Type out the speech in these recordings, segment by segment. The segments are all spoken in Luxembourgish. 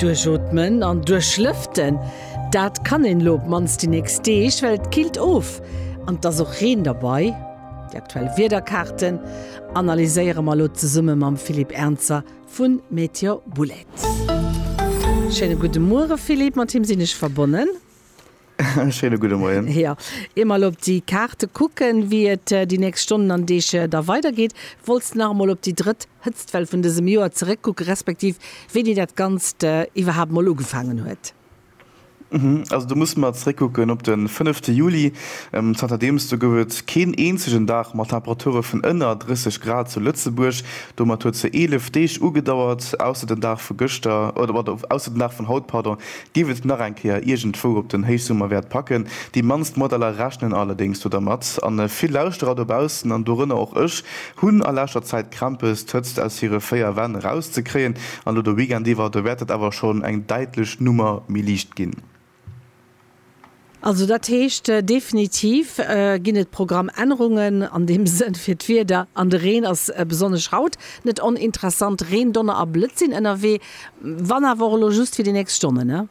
Duerchootmen an duerchlëften, dat kann een elo op d'mannst déi nächst Deeg, well et killt of an et ass och Reen derbei. Déi aktuell Wiederkaarten analyséiere mer elo zesumme mam Philippe Ernzer vu Meteor Boulets. Schéine gudde Muere Philippe, mat him sinn ech verbonnen. Schéine gudde Moien. Jo, ier mer elo op déi Kaarte kucken, wéi et déi nächst Stonnen an Deeg da weidergeet, wollts de nach emol op déi drëtt Hëtztwell vun dësem Joer zeréckkucken, respektiv wéini dat Ganzt iwwerhaapt emol ugefaangen huet? Also do musse mer zeréckkucken op de fënnefte Juli. Zanter deems do gouf et keen eenzegen Dag mat Temperature vun ënner 30 Grad zu Lëtzebuerg. Domat huet se 11 Deeg ugedauert, ausser den Dag vu gëschter, oder ausser den Dag vun haut, pardon, Giff et nach eng Kéier iergendwou op den Héichsummer wäert packen. Déi mannst Modeller rechnen allerdéngs do dermat. An vill Lauschterer dobaussen, an dorënner och ech, hunn a leschter Zäit Krämpes d'Hëtzt aus hire 4 Wänn eraus ze kréien. An elo de Weekend iwwer, do wäert dat awer schonn eng däitlech Nummer méi liicht ginn. Also dat heescht, definitiv ginn et Programmännerungen an deem Sënn fir d'Wieder. An de Reen ass besonnesch haut net oninteressant. Reen, Donner a Blëtz sinn ënnerwee, wann awer och elo just fir déi nächst Stonnen.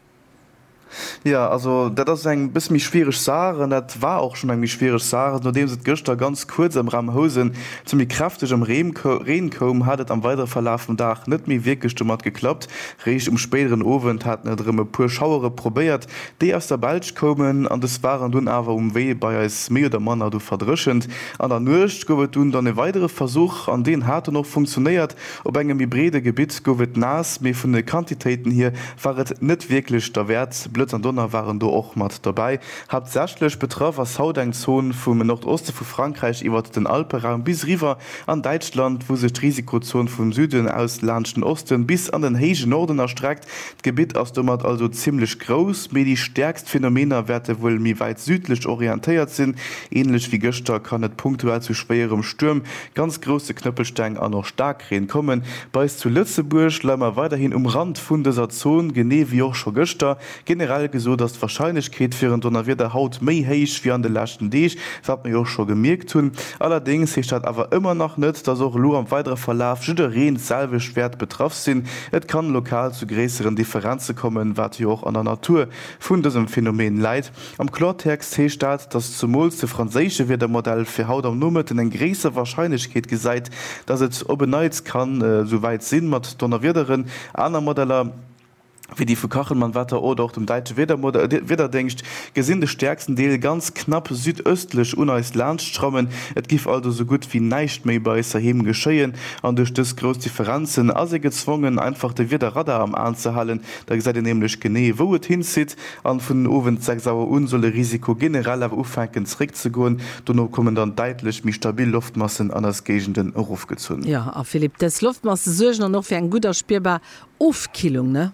Jo, also dat ass eng bësse méi schwiereg Saach an dat war och schonn eng méi schwiereg Saach. Nodeems et gëschter ganz kuerz am Raum Housen zu méi kräftegem Reen koum, hat et am weidere Verlaf vum Dag net méi wierklech domat geklappt, Réischt um spéideren Owend haten et erëm e puer Schauere probéiert, déi aus der Belsch koumen, an des waren dunn awer um Wee bei eis méi oder manner du verdréchent. An der Nuecht gouf et dunn dann e weidere Versuch, an deen hat dann och funktionéiert. Op engem méi breede Gebitt gouf et naass, mee vun de Quantitéiten hir war et net wierklech derwäert. Blëtz an Donner waren do och mat dobäi. Haaptsächlech betraff ass haut eng Zon vum Nordoste vu Frankräich iwwert den Alperaum bis eriwwer An Däitschland, wou sech d'Risikozon vum Süden aus laanscht den Osten bis an den héije Norden erstreckt, d'Gebitt ass domat also zimmlech grouss, mee déi stäerkst Phänomener wäerte wuel méi wäit südlech orientéiert sinn. Ähnlech wéi gëschter kann et punktuell zu schwéierem Stuerm, ganz grousse Knëppelsteng an och Staarkreen kommen. Bei eis zu Lëtzebuerg leie mer weiderhin um Rand vun dëser Zon, genee wéi och scho gëschter, Generell gesot ass d'Warscheinlechkeet fir en Donnerwieder haut méi héich wéi an de leschten Deeg, wat mir jo och scho gemierkt hunn. Allerdéngs heescht dat awer ëmmer nach net, dass och elo am weidere Verlaf jiddereen d'selwecht wäert betraff sinn. Et kann lokal zu gréisseren Differenze kommen, wat jo och an der Natur vun dësem Phänomen läit. Am Klortext heescht dat, dass zumools de franséische Wiedermodell fir haut am Nomëtten eng gréisser Warscheinlechkeet gesäit, dass et op en Neits kann esou wäit sinn mat Donnerwiederen. Aner Modeller. wéi déi vu Kachelmannwetter oder och dem Däitsche Wiederdingscht, gesinn de stäerksten Deel ganz knapp südëstlech un eis laanscht schrammen. Et giff also sou gutt wéi näischt méi bei eis heiheem geschéien an duerch dës grouss Differenzen ass ee gezwongen einfach de Wiederradar am Aen ze halen. Da gesäit een nämlech genee wou et hinzitt an vun den Owend 6 Auer un soll de Risiko generell awer ufänken zeréck ze goen. Dono kommen dann däitlech méi stabil Loftmassen an eis Géigenden erofgezunn. Jo, a Philippe, dës Loftmasse suergen dann och fir eng gutt a spierbar Ofkillung, ne?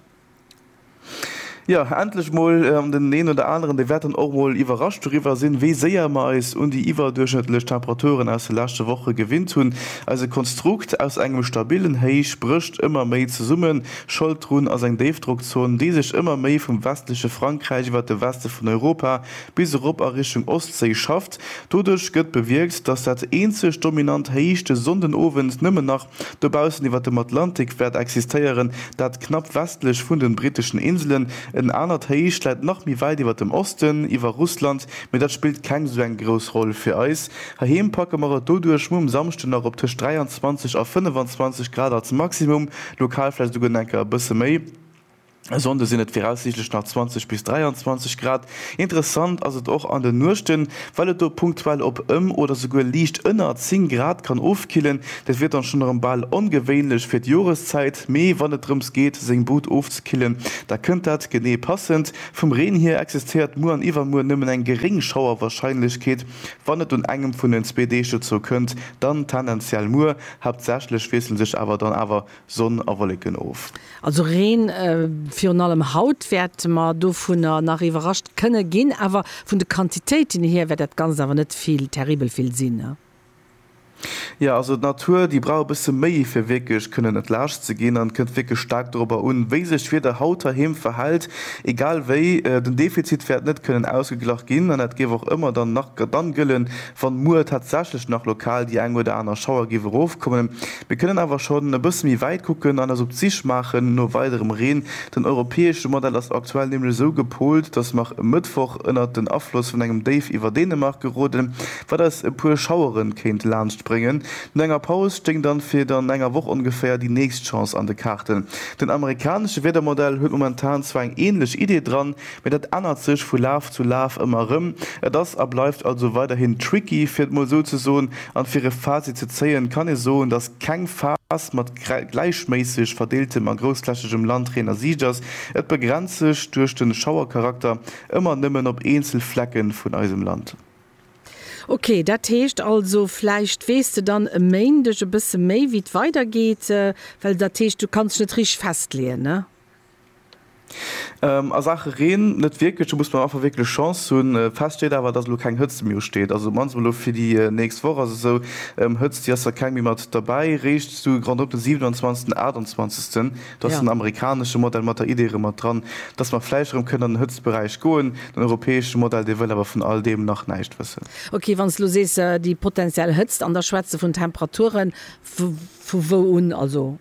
Jo, endlech mol! An den een oder aneren, dee wäert dann och mol iwwerrascht doriwwer sinn, wéi séier mer eis un déi iwwerduerchschnëttlech Temperaturen aus de leschte Woche gewinnt hunn. Eise Konstrukt aus engem stabillen Héich brécht ëmmer méi zesummen. Schold drun ass eng Déifdrockzon, déi sech ëmmer méi vum westleche Frankräich iwwer de Weste vun Europa bis erop a Richtung Ostséi schafft. Doduerch gëtt bewierkt, dass dat eenzegt dominant Héich de Sonndenowend nëmmen nach Dobaussen iwwer dem Atlantik wäert existéieren, dat knapp westlech vun den britteschen Inselen. En anert Héich läit nach méi wäit iwwer dem Osten, iwwer Russland, mee dat spillt keng esou eng grouss Roll fir eis. Heiheem packe mer et doduerch mol um Samschden nach op tëscht 23 a 25 Grad als Maximum, lokal vläicht esouguer enker e bësse méi. E Sonnde sinn et viraussiichtlech nach 20 bis 23 Grad. Interessant ass et och an de Nuechten, well et do punktuell op ëm oder souguer liicht ënner 10 Grad kann ofkillen. Dat wier dann schonn erëm bal ongewéinlech fir d'Joreszäit, mee wann et drëms geet, seng Bud ofzekillen, da kënnt dat genee passend. Vum Reen hier existéiert muer an iwwermuer nëmmen eng geréng Schauerwarscheinlechkeet, wann et un engem vun den zwee Deeg dozou kënnt, dann tendenziell muer. Haaptsächlech wiessle sech awer dann awer Sonn a Wolleken of. Also Reen virun allem haut wäert mer dovunner nach iwwerrascht kënne ginn, awer vun de Quantitéiten hier wäert dat Ganzt awer net vill, terribel vill sinn. Jo, also d'Natur, déi brauch e bësse méi fir wierklech kënnen entlaascht ze ginn. An et kënnt wierklech staark dorobber un, wéi sech d'Wieder haut heiheem verhält. Egal wéi, den Defizit wäert net kënnen ausgeglach ginn an dat géif och ëmmer dann nach dann gëllen, Wann muer tatsächlech nach lokal déi eng oder aner Schauer géif erofkommen, mir kënnen awer schonn e bësse méi wäit kucken an eis op d'Sich maachen no weiderem Reen. Den europäesche Modell ass aktuell nämlech esou gepolt, datt mer e Mëttwoch ënnert den Afloss vun engem Déif iwwer Dänemark geroden, wat eis e puer Schauere kéint laanscht bréngen. No enger Paus stéing dann fir dann enger Woch ongeféier déi nächst Chance an de Kaarten. Den amerikanesche Wiedermodell huet momentan zwar eng änlech Idee dran, Mee dat ännert sech vu Laf zu Laf ëmmer erëm. Et ass a bleift also weiderhin tricky, fir et mol esou ze soen. An fir e Fazit ze zéien, kann ee soen, dass keng Phas mat gläichméisseg verdeeltem a groussflächegem Landreen a Siicht ass. Et begrenzt sech, duerch den Schauercharakter, ëmmer nëmmen op eenzel Flecken vun eisem Land. Ok, dat heescht also, vläicht weess de dann e Méindeg e bësse méi wéi et weidergeet, well dat heescht du kanns net richteg festleeën, ne? A Saache Reen net wierklech, do muss mer einfach wierklech Chance hunn. Fest steet awer, dass elo keng Hëtzt méi usteet, also op d'mannst emol elo fir déi nächst Woch ass esou. Hëtzt, déi ass der keng méi mat derbäi, réischt sou grand op de 27 den 28. Do ass den amerikanesche Modell mat der Idee erëm mat dran, dass mer vläicht erëm kënnen an den Hëtztberäich goen. Den europäesche Modell, dee wëll awer vun all deem nach näischt wëssen. Ok, wann s de elo sees déi potentiell Hëtzt, an da schwätz de vun Temperaturen vu wou un? Also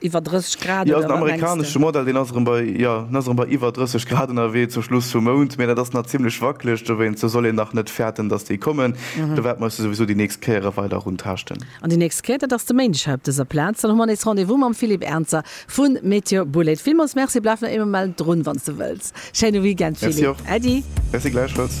Iwwer 30 Grad? Jo, den amerikanesche Modell, deen ass erëm bei, jo, deen ass erëm bei iwwer 30 Grad ënnerwee zum Schluss vum Mount, mee dat ass nach zimmlech wackeleg, dowéinst soll een nach net fäerten, datt déi kommen. Do wäerte mer eis jo souwisou déi nächst Kéiere weider runtaaschten. An déi nächst Kéier, dat ass de Méindeg hei op dëser Plaz, dann hu mer nees Rendez-vous mam Philippe Ernzer vu Météo Boulaide. Villmools Merci, bleift nach ee Moment drun, wann s de wëlls. Schéine Weekend, Philippe. Merci och. Äddi. Merci, gläichfalls.